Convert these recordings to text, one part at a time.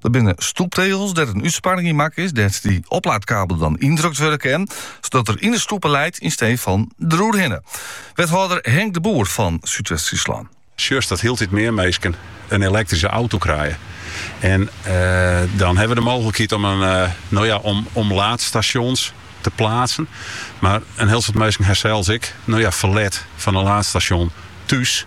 Dat binne stoeptegels dêr't in útsparring yn makke is, dêr't dy oplaadkabel dan yndrukt wurde kin, sadat er yn de stoepe leit yn stee fan deroer hinne. Wethâlder Henk de Boer fan Súdwest-Fryslân. Sjochst dat hieltyd mear minsken in elektryske auto krije. En dan hawwe we de mooglikheid om in, no ja, om laadstasjons te plaatsen. Mar in hiel soad minsken ha sels ek, no ja, ferlet fan in laadstasjon thús.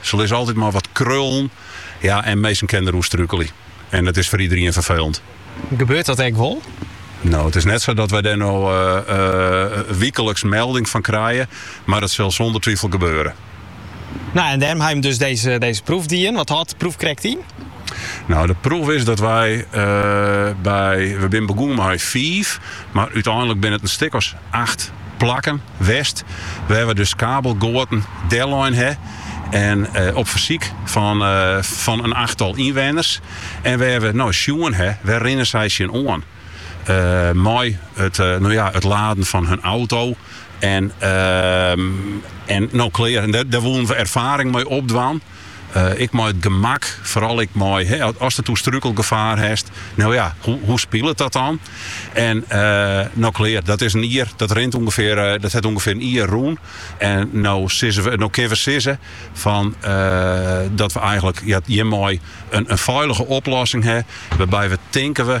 Se lizze altyd mei wat krullen, ja, en minsken kinne deroer strukelje. En dat is foar iederien ferfelend. Gebeurt dat ek wol? No, it is net sa dat wy dêr no wikeliks melding fan krije, mar it sil sûnder twifel gebeure. No, en dêrom ha je dus dizze dizze proef dien. Wat hâldt de proef krekt yn? No, de proef is dat wy by, we binne begûn mei fiif, mar úteinlik binne it in stik as acht plakken west wêr't we dus kabelgoaten dellein ha en op fersyk fan in achttal ynwenners en wêr't we no sjoen ha wêr rinne sy tsjin oan mei it laden fan hun auto en no klear. Dêr woenen we erfaring mei opdwaan. Ek mei it gemak, foaral ek mei ast it oer strúkelgefaar hast. No ja, hoe spilet dat dan? En no klear, dat is in jier, dat rint ûngefear, dat hat ûngefear in jier rûn. En no sizze we, no kinne we sizze fan dat we eigenlik hjirmei in feilige oplossing ha, wêrby't we tinke we,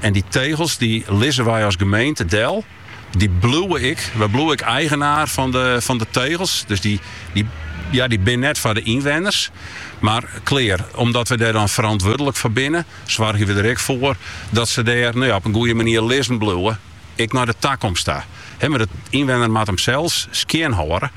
En dy tegels dy lizze wy as gemeente del. Dy bliuwe ek. Wy bliuwe ek eigenaar fan de tegels. Dus dy ja, dy binne net foar de ynwenners. Mar klear, omdat we dêr dan ferantwurdlik foar binne, soargje we der ek foar dat se dêr nou ja, op in goede manier lizzen bliuwe, ek nei de takomst ta. Mar de ynwenner moat him sels skjinhâlde.